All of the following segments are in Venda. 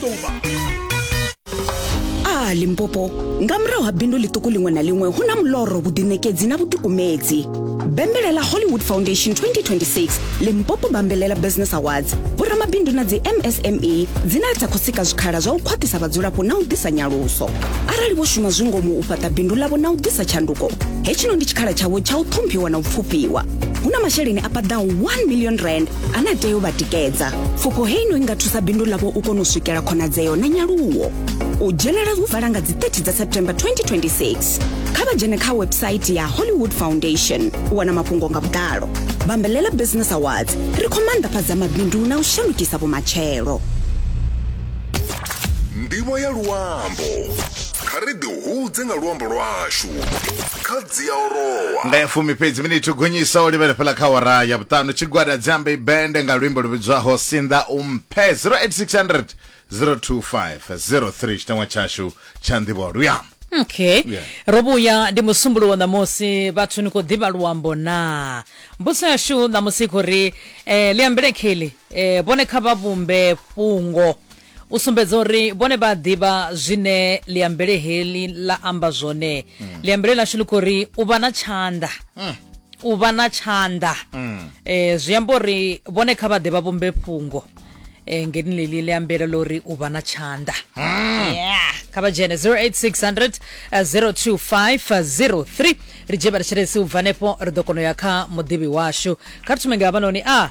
ṱuvha a limpopo nga murahu ha bindu ḽiṱuku ḽiṅwe na ḽiṅwe hu na muloro vhuḓiṋekedzi na vhutukumedzi bembelela hollywood foundation 2026 limpopo bambelela business awards vhoramabindu na dzi msme dzine dza khou sika zwikhala zwa u khwaṱhisa vhadzulapo na u ḓisa nyaluso arali vho shuma zwi ngomu u fhaṱa bindu ḽavho na u ḓisa tshanduko hetshino ndi tshikhala tshavho tsha u ṱhomphiwa na u pfufhiwa hu na masheleni a paḓaho 1 million rand a na tea u vha tikedza pfufho hei no i nga thusa bindu ḽavho u kona u swikela khonadzeo na nyaluwo u dzhenela hu vala nga dzi 30 dza september 2026 kha vha dzhene kha website ya hollywood foundation u wana mafhungo nga vhuḓalo bambelela business awards ri khou maanḓafhadza mabindu na u shandukisa vhumatshelo ndivho ya luambo kha ri ḓihudze nga luambo lwashu kha dzi ya orowa nga ya fumi fhedzi miniti u gonyisa o livhele fhela kha wara ya vhuṱanu tshigwada dzambe bende nga luimbo lu vhidzwaho sinḓa u mphe 08600 02503 tshiteṅwa tshashu tsha nḓivho luya okay Yeah. ro vhuya ndi musumbuluwo ṋamusi vhathu ni khou ḓivha luambo naa mbudziso yashu ṋamusi i khou ri um liambelekheli um vhone kha vha vhumbe fhungo u sumbedza uri vhone vha ḓivha zwine liambele heḽi ḽa amba zwone mm. liambele ḽashu ḽi khou ri u vha na tshanḓa mm. u vha na tshanḓa mm. eh, zwi amba uri vhone kha vha ḓe vha vhumbe fhungo eh, ngeni ḽeḽi ḽi ambela ḽo ri u vha na tshanḓa hmm. yeah. kha vha dzhene 08600 02503 ri dzhie vha ri tshelesi u bva hanefho ri ḓo kona u ya kha muḓivhi washu kha ri thume nga havhanoni a ah.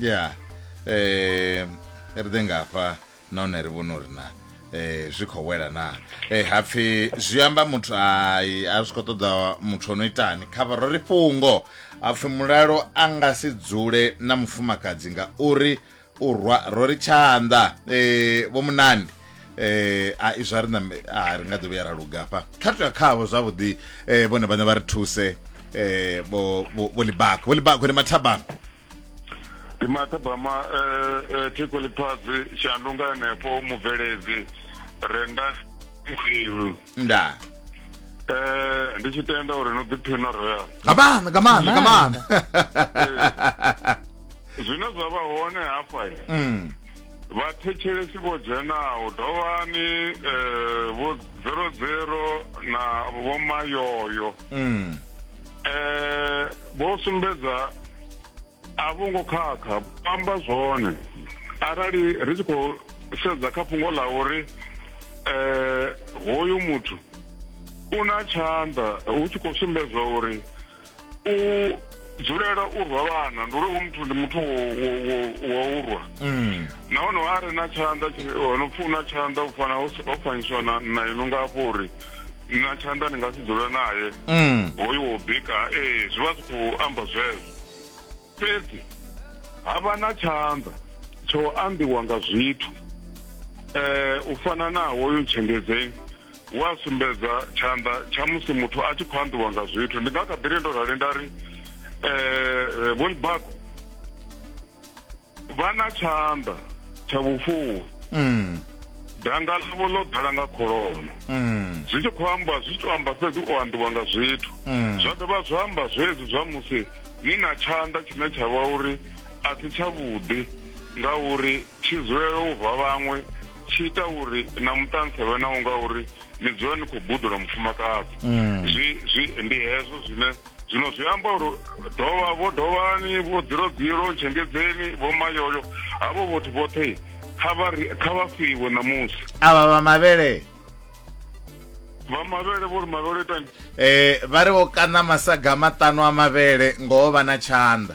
ya eh ri ḓe nga hafha nahone ri vhone uri na eh zwi khou wela na eh hapfi zwi amba muthu ai a zwi khou ṱoḓa muthu ono itani kha vha ri fhungo hapfi mulalo a nga si dzule na mufumakadzi nga uri u rwa ro ri tshanḓa eh vho munandi eh a izwa ri na a ri nga ḓo vhuya ra lugafha kha tou ya khavho zwavhuḓi eh vhone vhane vha ri thuse eh vho vho libako vho libako ni mathabang ndi mathabama eh, eh, thiko ḽifhasi shandunga henefho mubveledzi renda khwilu nda eh ndi tshi tenda uri no ḓiphina royal nga maanḓa nga maanḓa nga maanḓa zwine zwa vha hone hafha mm. vhathetshelesi vho dzhenaho dovhani eh, vho zero zero na vhomayoyo mm. eh vho sumbedza a vho ngo khakha amba zwone arali ri tshi khou sedza kha fhungo ḽa uri eh hoyu muthu u na tshanḓa hu tshi khou sumbedzwa uri u dzulela u rwa vhana ndi uri u muthu ndi muthu wa u rwa mm. nahone a re na tshanḓa ono pfuna tshanḓa u fana ho fanyiswa na ino nga afho uri na tshanḓa ni nga si dzula naye mm. hoyu wo bika ee zwi vha zwi khou amba zwezwo fhedzi ha vha na tshanḓa tsho ambiwa nga zwithu um u fana na hoyu ntshengedzeni u a sumbedza tshanḓa tsha musi muthu a tshi khou ambiwa nga zwithu ndi nga kha ḓiri ndo rali nda ri um vhonibako vha na tshanḓa tsha vhufuwi mm. danga ḽavho ḽo ḓala nga kholomo mm. zwi tshi khou amba zwi tshi to amba fhedzi u ambiwa nga zwithu mm. zwa dovha zwa amba zwezwi zwa musi ni na tshanḓa tshine tsha vha uri a si tshavhuḓi ngauri tshi dzulela u rwa vhaṅwe tshi ita uri na muṱansa vhe nawo ngauri ni dzula ni khou budula mufumakadzi mm. zwi ndi hezwo zwine zwino zwi amba uri dovha vho dovhani vho dzirogiro tshengedzeni vho mayoyo havho vhothu vhoṱhe kha vha ri- kha vha fiwe ṋamusi avha vha mavhele vha mavhele vho ri mavhele itani eh vha ri vho kaṋa masaga maṱanu a mavhele ngoho vha na tshanḓa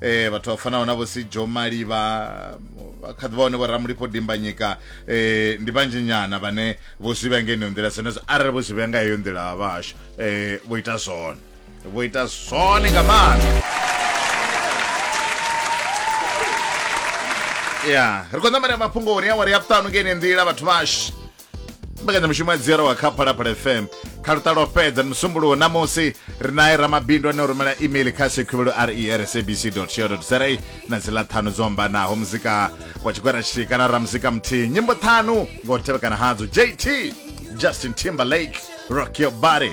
eh vhathu vha fanaho na vho si Joe Maliba kha ḓivha hone vho Ramulipho Dimbanyika eh ndi vhanzhi nyana vhane vho zwi vhenge ino nḓila senezwo arali vho zwi vhenga heyo nḓila vha hashu eh vho ita zwone vho ita zwone nga maanḓa ya ri khou ṋamela mafhungo uri awari ya vhuṱanu ngeine nḓila vhathu vhashu mbekanyamushumo ya dziero wa kha phalaphala fm kha luṱa lwo fhedza ni musumbuluwo ṋamusi ri naye ramabindu ane o rumela email kha sekhuvhelo resabc co za na dzi ḽa ṱhanu dzo ambanaho muzika wa tshigwera tshithihi kana ra muzika muthihi nyimbo ṱhanu nga u tevhekana hadzo jt justin timberlake rock your body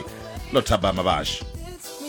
lo thabama vhashu